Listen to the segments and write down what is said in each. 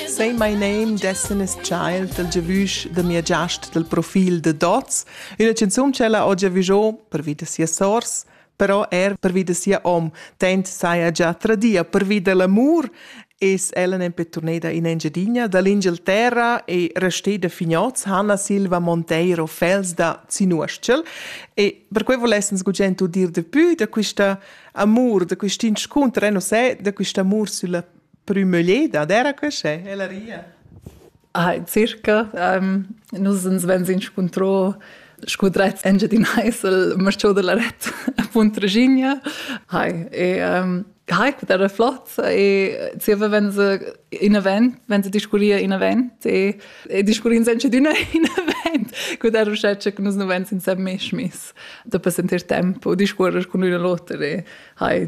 Say my name, Destiny's Child, dal giavüsch da mia giast dal profil de Dots, üna canzun ch'ella ho giavüscho pervi da sia sors, però er pervi da sia hom, tant saja già tradia pervi da l'amur, es ella nempe turneda in Engiadina dall'Inghilterra e resteda fignoz Hanna Silva Monteiro Fels da Zinuostschel e per quei volessens gugent udir de pü da quista amur, da quist inscunter, eh, non sai, da quist amur sulla prümügleda d'eira quest'e, ella ria. Ah, circa. Um, nus ens vegns inscuntro scu dretts Engiadin Heisel, marciò de la ret a Punt Regigna. Hai, e um, Hai, quet era flott e zieva wenn se in event, wenn se discurria in event e, e discurrin senza d'una in event, quet era uschè che nus nu vegns insem mesch miss da per sentir tempo discuorrer cun l'una l'oter e hai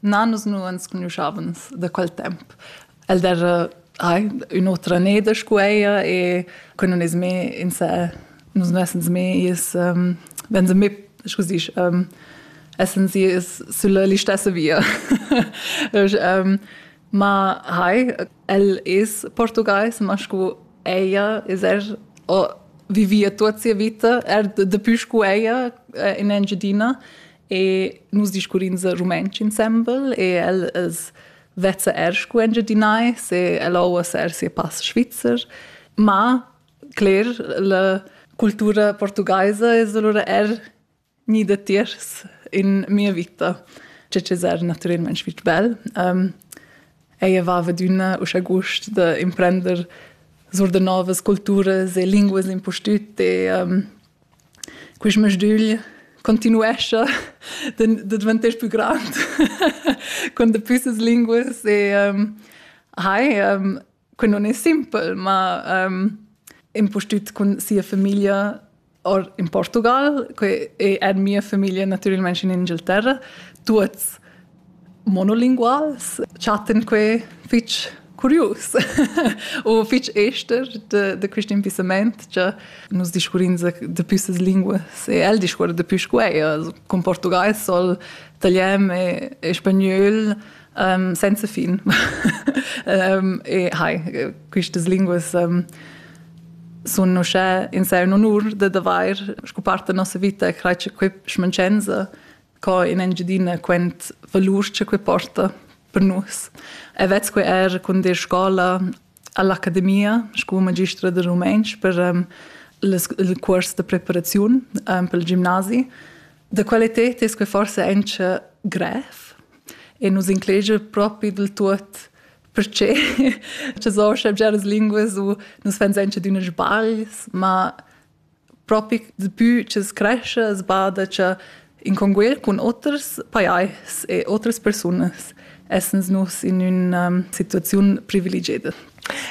Na, nus nu ans cugnuschavans da quel temp. El d'eira ai ün'otra neda scu eir e que nun es mê insè, nus nu essans mê i's ähm, vegns mê, scu s'disch, ähm, essans i's sülla listessa via. ähm, ma hai, el es portugais, ma scu eir es er o vivia tuot sia vita, er dapü scu eir in Engiadina e nus discurrins rumantsch insembel e el es vezza er scu Engiadinai, se el ouas er sia pass svizzer, ma cler la cultura portugaisa es allura er ni datiers in mia vita. Ce es er natüralment fich bel. Um, ella vava d'üna uschè gust da imprender sur da novas culturas e linguas impustüt e um, Quist masdügl continuescha da dvanter pü grand con dapü ses linguas e hai que non es simpel, ma impustüt cun sia famiglia or in Portugal, que è mia famiglia natüralmaing in Inghilterra, tuots monolinguals chattan quai fitg curius u fitg ester de, de quest impissament che nus discurrins dapi ses linguas e el discuora dapi sco eir cun portugais sol italian e, e spagnol um, senza fin um, e hai questas linguas um, sun uschè in sé un onur da d'avair sco part da nossa vita e crai che quei schmancenza co in Engiadina quent valur che quei porta per nus. E vez quei er con de scola all'Accademia, sco magistra de rumentsch per um, il curs de preparazione um, per il gimnasi. Da qualità è quei forse anche grev e nos inclege proprio del tutto perché ci sono già le lingue su nos fans anche di unes sbagls, ma propi dapü ch'es crescha as bada cha in conguer cun oters pajais e otras persunas essans nus in üna um, situaziun privilegieda.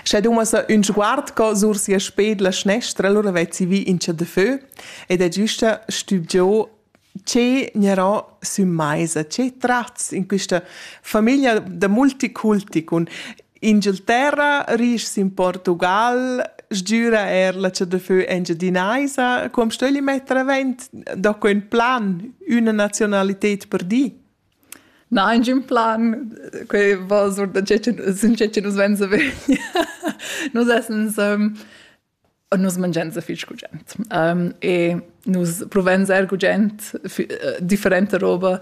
Sche dumas ün sguard co sur sia sped la schnestra, allora vezzi vi in cha de fö ed è giusta stübgiò che gnarà sün maisa, che trats in quista famiglia da multiculti cun Inghilterra, ris in Portugal, sgüra eir la chadafö engiadinaisa, com stögli metter avent da que ün plan, üna nazionalited per di? Na, ingün plan, que va sur da che nus venza vegn. Nus essens nus mangians fich gugent. Um, e nus provens eir gugent äh, differenta roba.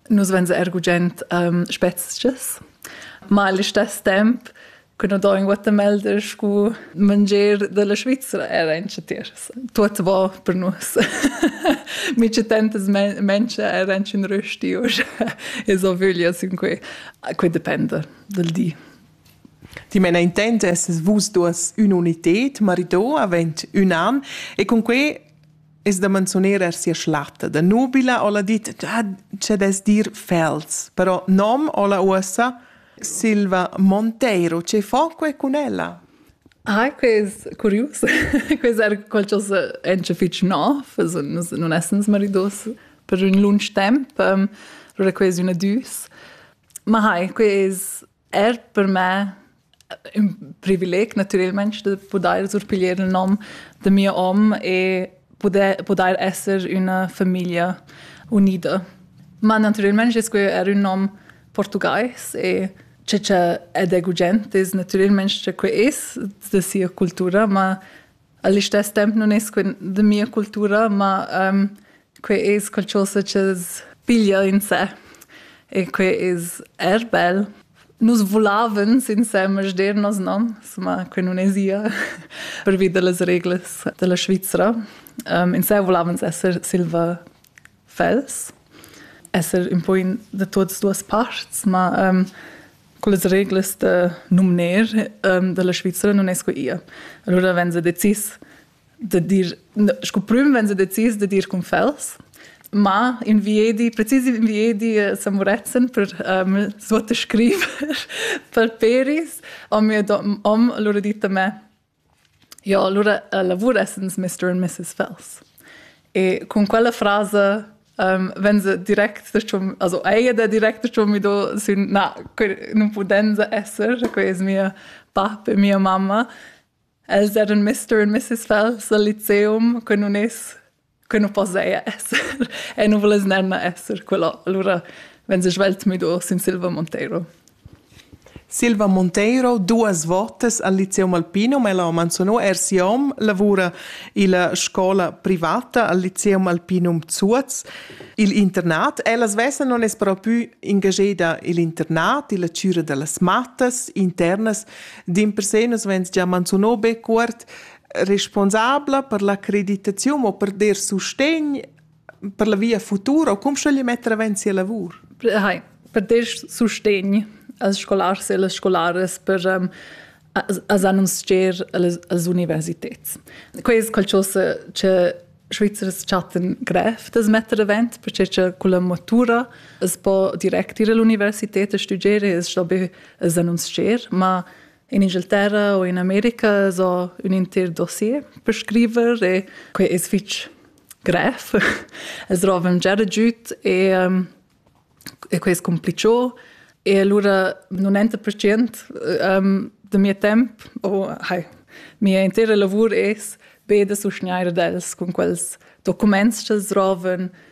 Nus vens eir gugent um, spezchas, ma al istess temp che no do in Guatemala scu mangier della Svizzera era in chatiers. Tuot va per nus. Mi c'è tantas menschen era in rösti usch. E so vöglia sin que. Que depende del di. Dimena intent esses vus duas ün'united, marido avend ün an e cun quei es da manzuner er sia schlatta. Da nubila ho'la dit che des dir Fels, però nom ho'la uossa Silva Monteiro. Che fo que cun ella? Ah, que es curius. que es er qualchosa encha fich nov, es non essens maridos per ün lunch temp. Allura que es üna düs. Ma hai, que es er per me ün privileg natüralmaing da pudair surpiglier il nom da mia om e pudair pudair esser üna famiglia unida. Ma natüralmaing es quel er ün nom portugais e che cha ed è gugent es natüralmaing cha que es da sia cultura, ma A listess temp nun es que da mia cultura, ma que es qualchosa cha's piglia in sè e que es eir bel. Nus vulavens insemel sdernos, no? Insomma, que nun esa pervi da las reglas da la Svizra. Insè vulavens esser silva fels esser ün po in da tuots duos pasts, ma ehm cullas reglas da numner ehm da la Svizra nun es que ia. Alura vain se decis da dir scu prüm vain se decis da dir cun fels, ma in viedi, precis in viedi a San Murezzan per ehm suottascriver per peris ho mia dom, hom alura dit a me Jo, alura lavur essens mister and missis Fels. E cun quella frasa vegn se direct dachomb, also ei ed ha direct dachomb mido sün na, que nun pudenza esser, quei es mia bap e mia mamma. Els eran mister and missis Fels al liceum, que nun es que nu posaja esser e nu vuless nemna esser quella. Alura vegn svelt müdo sin Silva Monteiro. Silva Monteiro duas votas al Lyceum Alpinum e la ho manzunò er sia hom lavura illa scola privata al Lyceum Alpinum Zuoz. Il internat, ella svessa non es però pü ingageda i'l internat, illa chüra da las mattas internas, dimpersè nus vegns già manzunò be cuort responsabla per la creditaziun o per der sustegn per la via futura o cum schögli metter avanti sia lavur? Hai, per der sustegn als scolars e las scolares per um, as annunzier als universitets. Quai es qualcosa che Schweizers chatten grev das metter avant, perché che con la matura es po direct ir all'università a studiare e es da be annunzier, ma In Ingilterra o in America so ün inter dossier per scriver e quai es fich grev. Es rovan già giüt e, e quai es cumplichò. E alura nun enta percient da mia temp, o hai, mia intera lavur es be da sustgnair ad els cun quels documents ch'els rovan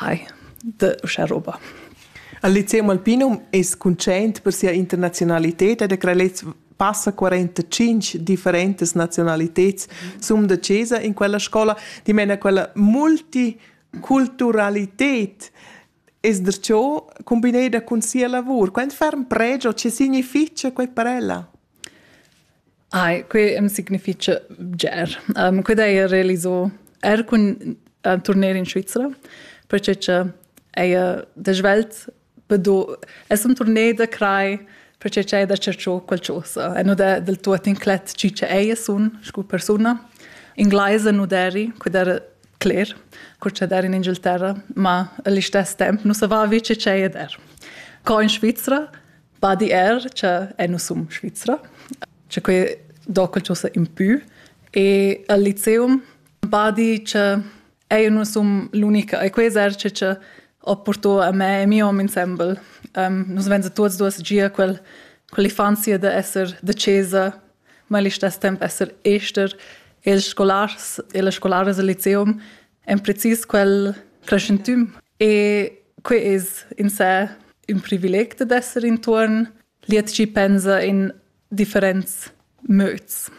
Hi, de uschè roba. Il Lyceum Alpinum es cuntschaint per sia internaziunalità ed ha creà lez passa 45 differentas nazionaliteds sum da chesa in quella scola, dimena quella multiculturalität es derciò combineda cun sia lavur. Quant ferm pregia, che significha quai per ella? Ai, que am signifitcha bger. Que d'heja realiso eir cun turner in Svizra, perche cha eir da svelt do es ün turner da crai perche cha eir da cercho qualchosa e nu d'he del tuot inclet chi cha eir sun scu persuna. Inglaisa nu d'eri, que d'era cler, cur cha d'eri in Inghilterra, ma a listess temp nu savaiva chi cha eir d'er. Co in Svizra Badier, che è nus sum Svizra, che quei docal cho sa impü e al liceum badi che è nus sum l'unica e quei eserci che ho portò a me e mio hom insembel. Um, nus venza tuots duos gia quel quell'infanzia da esser da chesa, ma allo stesso tempo esser ester e le scolars e le scolares al liceum en precis quel preschentüm. E quei es in sé ün privileg dad esser intuorn. Liet chi pensa in differents möds.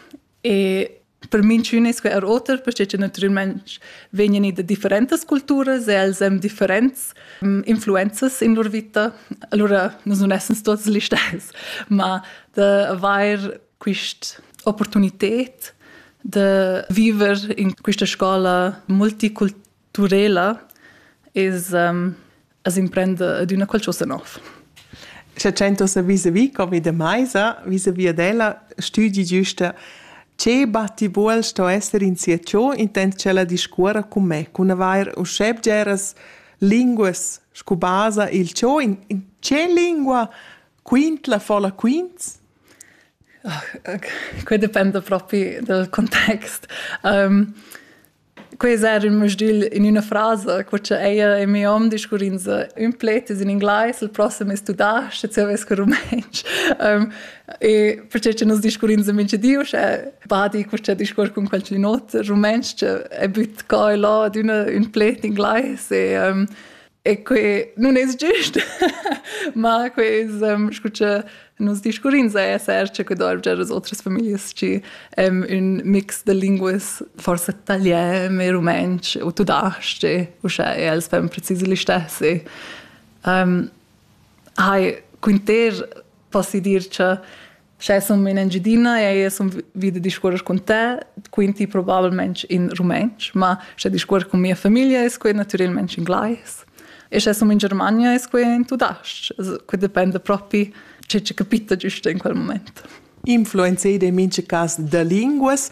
E per minchün es quei er oter, perché che natüralment vegnan i da differentas culturas e els hem differents mm, influenzas in lur vita. Allura nus nun essens tuots gli stess, ma da avair quest opportunited de viver in questa scola multiculturela es um, as imprende d'una qualcosa nov. Se cento se vis-a-vis come de Maisa, vis-a-vis ad ella, studi giusta che batti buol sto esser in sia ciò intent cella discuora con me, con avair usceb geras linguas scu basa il ciò in, in ce lingua Quint, la folla quints? Quei dependa propi dal context. Um, quei es er ün musdil in üna frasa, co cha eir in mio hom discurrins ün pled in inglais, il prossem es tudasc, e zöver scu rumantsch. Um, e perché che nos discurrins in mincha di, uschè badi co cha discuor cun qualcun ot rumantsch, è büt co e là d'üna ün pled in inglais e um, e que nun es giust ma que es ehm, scu cha nos discurrins a esser cha que doivgia as otras familias chi ehm, ün mix da linguas forsa italian e rumantsch o tudasch-ch uschè e els fan precis l'istessi. Ehm, hai quinter poss dir cha Sche sun in Engiadina e sun vi da discuors cun te, quinti probabilmente in rumantsch, ma sche discuors cun mia famiglia es quai natüralmente in glais. E sche sun in Germania es quai in tudas-ch. Que dependa propi che che capita giusto in quel moment. Influenzaid in mincha cas da linguas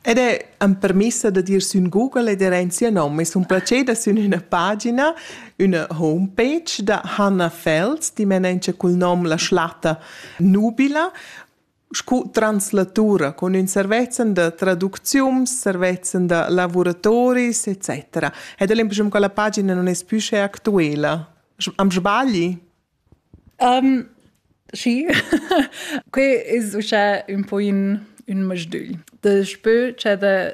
ed è am permessa da dir sün Google ed er in sia nom. Es un placer da sün üna pagina, üna homepage da Hanna Fels, dimena cul nom La Schlatta nubila scu translatura cun ün servezzan da traduczium, servezzan da lavuratoris, etc. Ed l'impressiun che la pagina non es pü sche actuela. Am sbagli? Um, sì, que es uschè ün po in, ün masdügl. Da spö c'è da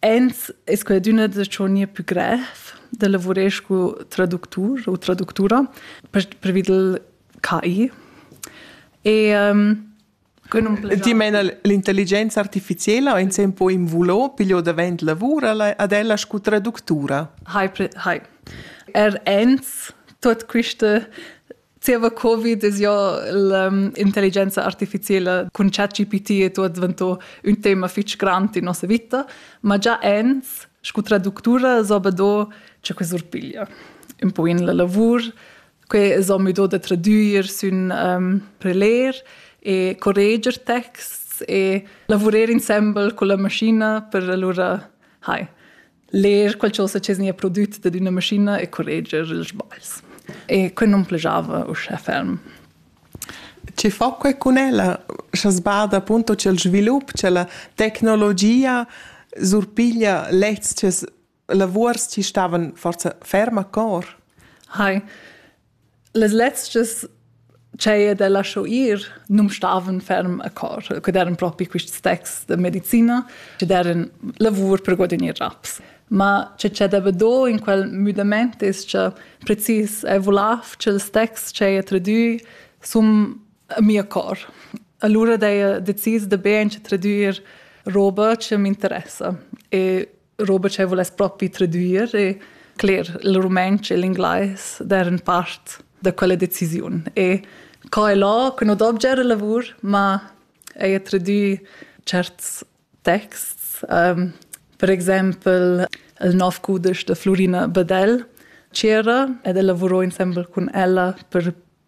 Eins es quadüna da tschonir pü grev da lavurer scu traductur u traductura pervi dal KI. E um, Ti meina l'intelligenza artificiela o insem po invulo piglio davent lavur ad ella scu traductura? Hai, hai. Er ins tot quiste Zieva Covid es jo l'intelligenza artificiela cun ChatGPT e tuot dvanto ün tema fich grand in nossa vita, ma già ins scu traductura s'ho be do cha que surpiglia ün po in la lavur. Que s'ho müdò da tradüer sün preler e correger texts e lavurer insembel culla mascina per alura, hai, ler qualcosa che nia prodüt dad üna maschina e correger ils sbagls. E quel non plajava uschè ferm. Chi fa que cun ella, scha sbada appunto c'è il svilup, c'è la tecnologia, surpiglia lezs che lavuors chi stavan forza ferm a cor? Hai, Las lezchas ch'haja da lascho ir nu'm stavan ferm a cor, que d'eran propi quists texts da medicina chi d'eran lavur per guadagner raps. Ma che c'è da be do in quel müdamaint es cha precis eau vulaiv cha ils texts ch'haja tradüi sun a mia cor. Alura d'haja decis da be aint tradüer roba chi m'interessa e Robert che vuless propi traduir e cler il rumantsch e l'inglais der in part da quella decisiun e co è là che non objet il lavur ma è traduit certs texts um, per exempel il nov cudisch de Florina Bedel c'era ed el lavurò insembel cun ella per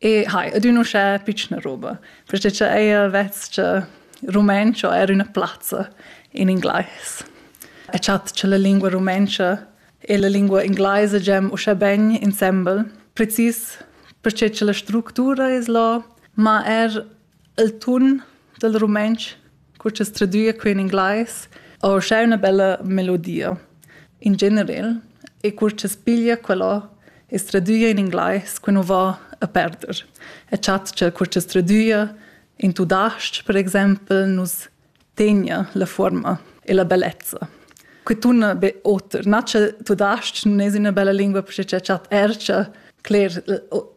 E hai, ed ün uschè pitschna roba, perché cha eir vess-cha rumenscho eir üna plazza in inglais. E chat cha la lingua rumentscha e la lingua inglaisa giam uschè ben insembel, precis perché cha la structura es là, ma er il tun dal rumantsch, cu cha's tradüa que in inglais, ho uschè üna bella melodia in generel e cur cha's piglia quella e's tradüa in inglais que nu va a perder e chatscha cur cha's tradüa in tudasch per exaimpel nus tegna la fuorma e la bellezza. Que tunna be oter. Nace tudasc nun es üna bella lingua perche cha chat ercha cler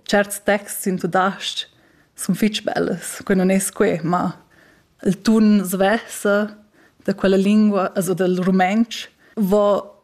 certs texts in tudasc sun fich bellas. Que non es que, ma il tun svessa da quella lingua, also dal rumentsch, vo